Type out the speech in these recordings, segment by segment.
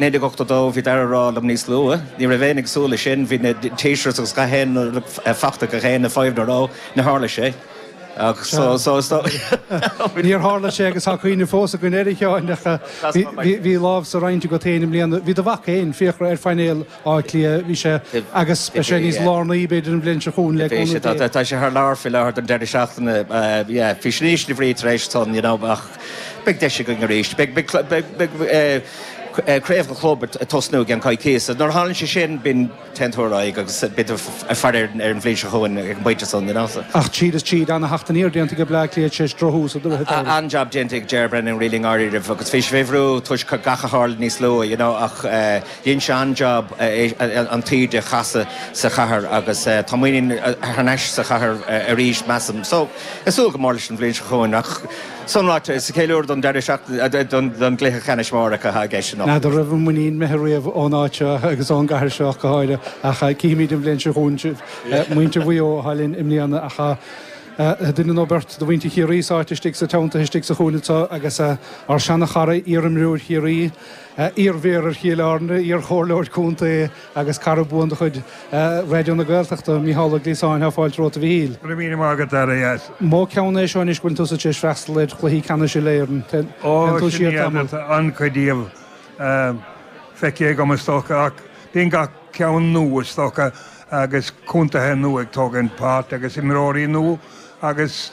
1982 Bhí Dara ag rá liom níos luaithe, ní raibh éinne ag súil leis sin, bhí na t-shirts agus gach aon fachta gach aon, an five in a row, níor tharla sé. Ach so, so, is dóigh. Níor tharla sé agus tá cuimhne fós againn air a Sheáin ach bhí lámh sa roinnt agat féin i mbliana, bhí do mhac fhéin, Fiachra, ar phainéal Átha Cliath, bhí sé, agus beidh sé níos lárnaí, b'fhéidir, an bhliain seo chugainn, le cúnamh Dé. Tá sé thar lear faoi láthair don deireadh seachtaine, yeah, Faisnéis na bhFraoigh tar éis san, you know, ach beidh deis againn arís. Beidh Craobh an Chlub ag tosnú i gceann coicíse. Nuair a tharlaíonn sé sin, bíonn teanntás orainn agus bítear ag faire ar an bhliain seo chugainn ag an bpointe san, you know, so. Ach tríd is tríd, ana-theacht aniar déanta aige Bleá Cliath tar éis drochthús a dturas anuraidh. An-jab déanta ag Ger Brennan really i ndáiríribh agus bhí sé faoi bhrú toisc gach a tharla níos luaithe, you know, ach, eh, Dhein sé an-jab an taoide a chasadh sa chathair agus tá muinín thar n-ais sa chathair arís, measaim. So, ag súil go mór leis an bhliain seo chugainn. Ach, san ráite, is ceiliúradh don deireadh seachtaine, don gcluiche ceannais mór atá i gceist anocht. N'fheadar an raibh an muinín imithe riamh ón áit seo agus ón gcathair seo go háirithe ach cífimid an bhliain seo chugainn. Siad muintir Mhaigh Eo, atá linn i mbliana ach duine nó beirt de mhuintir Chiarraí sáite istigh sa teannta istigh sa chúinne seo agus ár seana-chara, iarimreoir Chiarraí, Iar-Mhéara ar Chill Airne, iar-Chomhairleoir Contae agus cara buan de chuid Raidió na Gaeltachta, Micheál Ó Gliasáin, tá fáilte romhat, a Mhichíl. Go raibh míle maith agat. An mó ceann é seo anois go bhfuil tusa tar éis freastal ar Chluichí Ceannais Uile-Éireann. Téann tú siar tamall. Ó, sin iad, tá an-chuid díobh feicthe agam is dócha, ach bíonn gach ceann nua is dócha agus contaetha nua ag tógaint páirt agus imreoirí nua agus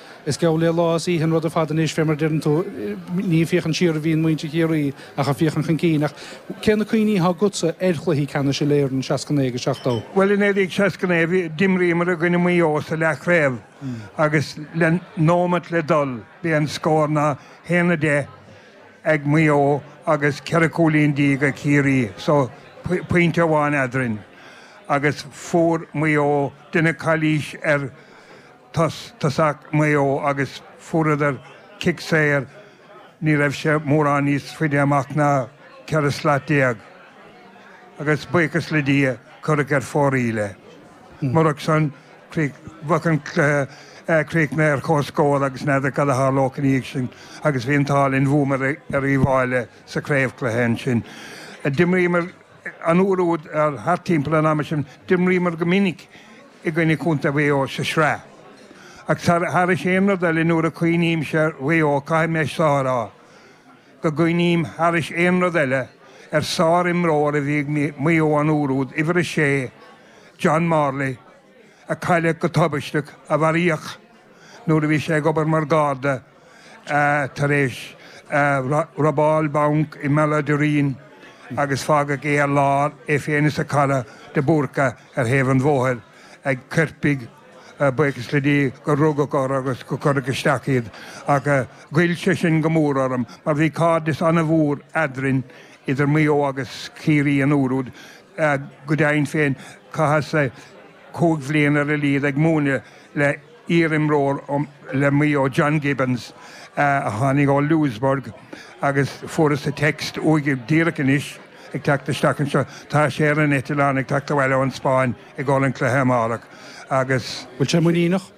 Is geall le lá is oíche an rud ar fad anois, fé mar a deireann tú. Ní ag féachaint siar a bhíonn muintir Chiarraí ach ag féachaint chun cinn. Ach cé na cuimhní atá agatsa ar chluichí ceannais uile-Éireann i seasca naoi agus seachtó? Bhuel, i 1969 bhí, d'imríomar i gcoinne Mhaigh Eo sa leathchraobh agus le nóimeat le dul b'é an scór ná a haon a deich ag Maigh Eo agus ceithre chúilín déag ag Ciarraí so pointe amháin eadrainn agus fuair Maigh Eo deineadh calaois ar tos- tosach Mhaigh Eo agus fuaireadar cic saor, ní raibh sé mórán níos faide amach ná ceithre slat déag, agus buíochas le Dia, cuireadh ar fóraoil é. Murach san, bheadh an cluiche críochnaithe ar comhscór agus n'fheadar cad a tharlódh ina dhiaidh sin agus bhí an t-ádh linn, bhuamar ar Uíbh Fhailí sa chraobhchluiche ansin. D'imríomar an uair úd, thart timpeall an ama sin, d'imríomar go minic i gcoinne Chontae Mhaigh Eo sa tsraith. Ach thairis aon rud eile nuair a chuimhnímse ar Mhaigh Eo caithfidh mise a rá go gcuimhním thairis aon rud eile ar sár-imreoir a bhí ag Maigh Eo an uair úd, uimhir a sé, John Morley, a cailleadh go tubaisteach, a mharaíodh nuair a bhí sé ag obair mar Gharda. tar éis robáil bainc i mBealach an Doirín agus fágadh é ar lár, é féin is a chara de Búrca, ar thaobh an bhóthair ag coirpigh buíochas le Dia gur rugadh orthu agus gur cuireadh isteach iad. Ach ghoill sé sin go mór orm mar bhí cairdeas an-mhór eadrainn idir Maigh Eo agus Ciarraí an uair úd. Go deimhin féin, chaitheas cúig bhliain ar a laghad ag múineadh le. iarimreoir le Maigh Eo, John Gibbons, a tháinig ó Louisburgh agus fuaireas text uaidh díreach anois ag teacht isteach anseo. Tá sé ar an eitleán ag teacht abhaile ón Spáinn i gcomhair an cluiche amárach agus. Bhfuil sé muiníneach?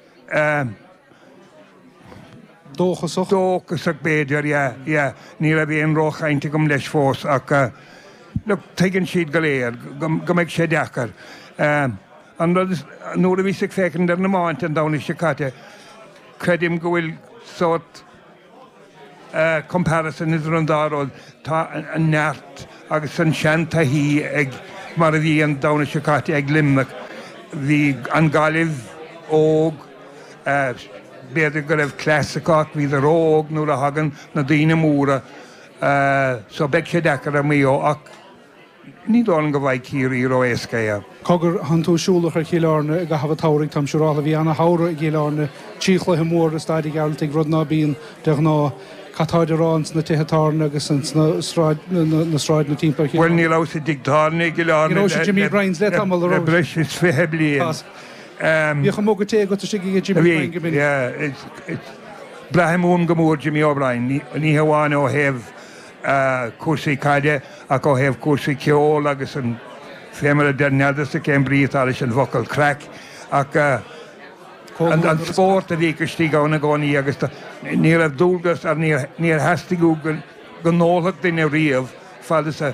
Dóchasach? Dóchasach b'fhéidir, yeah, yeah. Ní raibh aon ró-chaint agam leis fós ach, look, tuigeann siad go léir go mbeidh sé deacair. An rud is, nuair a bhíos ag féachaint ar na meáin an Domhnach seo caite, creidim go bhfuil sórt eh comparison idir an dá rud, tá an neart agus an seantaithí ag, mar a bhí an Domhnach seo caite ag Luimneach, bhí an Gaillimh óg, eh b'fhéidir go raibh cleas acu ach bhíodar ró-óg nuair a thagann na daoine móra eh so beidh sé deacair ar Mhaigh Eo ach, Ní dóigh liom go bhfaighidh Ciarraí ró-éasca é. Cogar, tánn tú siúlach ar Chill Airne i gcaitheamh an tsamhraidh, táim siúrálta. Bhí ana shamhradh i gCill Airne. Trí chluiche mór i Staid a' Ghearaltaigh, rud ná bíonn de ghnáth. Cad táid a rá ins na tithe tábhairne agus ins na na sráideanna timpeall ar Chill Airne? Bhuel, ní rabhas i dtigh tábhairne i gCill Airne le le breis is fiche bliain. Ní rabhais i Jimmy Brien's le tamall, an rabhais? Tá's. Bhíodh an muga tae agat istigh i dtigh Jimmy Brien go minic. Bhí, yeah. Braithim uaim go mór Jimmy O'Brien, ní hamháin ó thaobh cúrsaí caide ach ó thaobh cúrsaí ceoil agus an fé mar a deir n'fheadarsa cén brí atá leis an bhfocal craic ach an spórt a bhíodh istigh ann i gcónaí agus ní raibh dualgas ar níor theastaigh uaidh go n-ólfadh duine riamh fad is a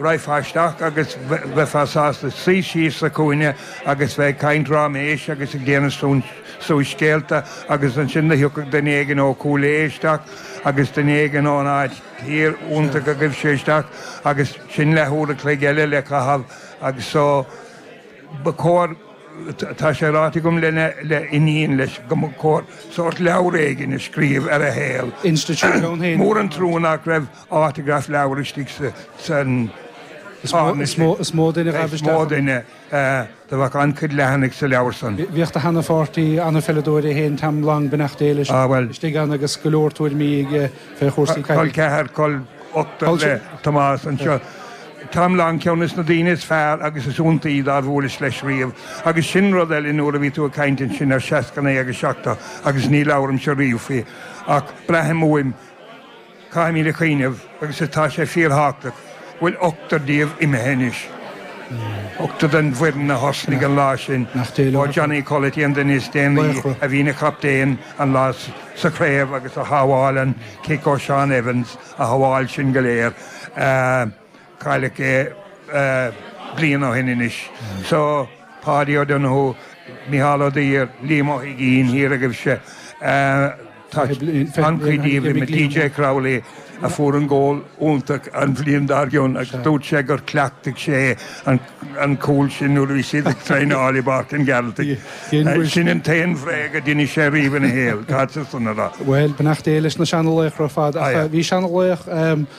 raghfá isteach agus bheifeá sásta suí síos sa chúinne agus bheith ag caint ráiméis agus ag déanamh suas scéalta agus ansin do thiocfadh duine éigin ó Chúil Aodha isteach agus duine éigin ón áit thiar ionta go ghaibh sé isteach agus sin leathuair a chloig eile le caitheamh agus so ba chóir, tá sé ráite agam le le iníon leis go mba chóir sórt leabhar éigin a scríobh ar a shaol, mór an trua nach raibh autograph leabhar istigh san Is mó duine a ghaibh isteach. a bheadh an-chuid leathanaigh sa leabhar san. Bhíodh do sheana-pháirtí an-pheileadóir é féin Tom Long, beannacht Dé leis, istigh ann agus go leor tuairimí aige fé chúrsaí caide. Col ceathar, col ochtar le Tomás anseo. Tom Long ceann des na daoine is fearr agus is iontaí dár bhuaileas leis riamh. Agus sin rud eile nuair a bhí tú ag caint ansin ar sheasca naoi agus seachtó agus ní labhraimse riamh faoi ach braithim uaim, Caithfimid a chuimhneamh, agus atá sé fíorthábhachtach, go bhfuil ochtar díobh imithe anois, ochtar den bhfoireann a thosnaigh an lá sin, ó Johnny Culloty an duine is déanaí a bhí ina chaptaen an lá sa chraobh agus a shábháil an cic ó Seán Evans, a shábháil sin go léir. cailleadh é bliain ó shin anois so Páidí O'Donoghue, Micheál Ó Duibhir, Liam Ó hUiginn, thiar agaibhse, tá an-chuid díobh imithe, DJ Crowley a fuair an gól iontach an bhliain dár gcionn agus dúirt sé gur chleachtaigh sé an cúl sin nuair a bhí siad ag traenáil i bPáirc an Ghearaltaigh. Sin an t-aon bhréag a d'inis sé riamh ina shaol, caithfead san a rá. Bhuel, beannacht Dé leis na seanalaochra ar fad ach bhí seanalaoch.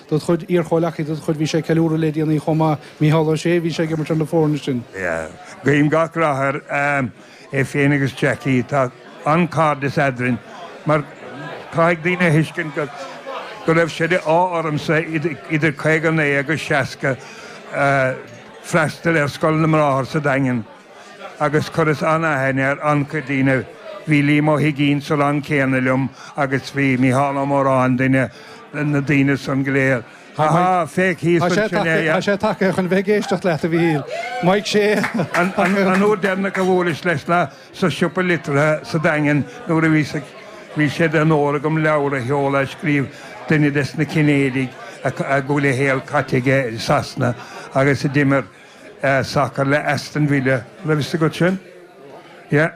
do do chuid iarchomhleacaithe, do do chuid Bhí sé ag ceiliúradh le déanaí chomh maith Micheál Ó Sé, bhí sé ag imirt ar na foirne sin. Guím gach rath air, é féin agus Jackie, tá an-cairdeas eadrainn mar caithfidh daoine a thuiscint go go raibh sé de ádh ormsa idir 59 agus 60 freastal ar Scoil na mBráthar sa Daingean, agus chuireas an-aithne ar an-chuid daoine, bhí Liam Ó hUiginn sa rang céanna liom agus bhí Micheál Ó Móráin, duine de na daoine san go léir. Ha ha, féach thíos ansin é. Tá sé tagtha chun bheith ag éisteacht leat, a Mhichíl. Mike Shea. An uair deireanach a bhuaileas leis ná sa siopa liteartha sa Daingean nuair a bhíos ag. Bhí sé d'onóir agam leabhar a sheoladh a scríobh duine des na Cinnéidigh a bhfuil a shaol caite aige i Sasana agus a d'imir sé sacar le Aston Villa. Raibh fhios agat sin? Yeah.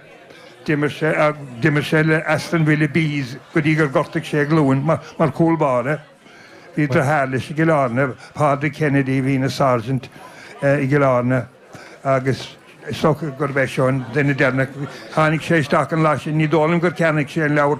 D'imir sé, d'imir sé le Aston Villa B's go dtí gur ghortaigh sé a ghlúin mar, mar chúl báire. Bhí deartháir leis i gCill Airne, Pádraig Kennedy a bhí ina sergeant i gCill Airne agus is dócha gurb é seo an duine deireanach. Tháinig sé isteach an lá sin, ní dóigh liom gur cheannaigh sé an leabhar,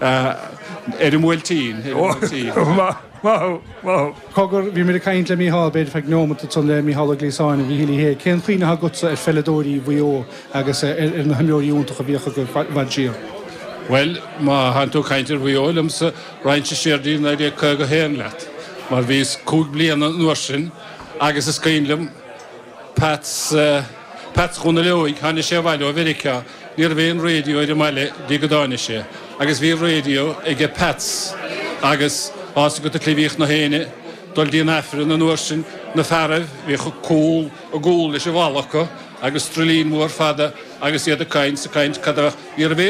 Ar an mBuailtín, ar an mBuailtín. Ó, maith, maith thú, maith thú. Cogar, Bhí mé ag caint le Mícheál, b'fhéidir feadh nóimeat, ansan le Mícheál Ó Gliasáin a Mhíchíl Uí Shé, cén chuimhne atá agatsa ar pheileadóirí Mhaigh Eo agus ar na himreoirí iontacha a bhíodh acu i bhfad siar? Bhuel, má thánn tú ag caint ar Mhaigh Eo liomsa, raghainnse siar dtí 1951 leat, mar bhíos cúig bliana an uair sin agus is cuimhin liom Pats, Pats Dhónaill Óig, tháinig sé abhaile ó Mheiriceá, Ní raibh aon raidió ar an mbaile dtí go dtáinig sé agus bhí raidió aige Pats agus tá a fhios agat go mbíodh gach aoinne, dul dtí an Aifreann an uair sin, na fearaibh, bhíodh cúl a gcúl leis an bhalla acu agus druilín mhór fada agus iad ag caint is ag caint cad a bheadh.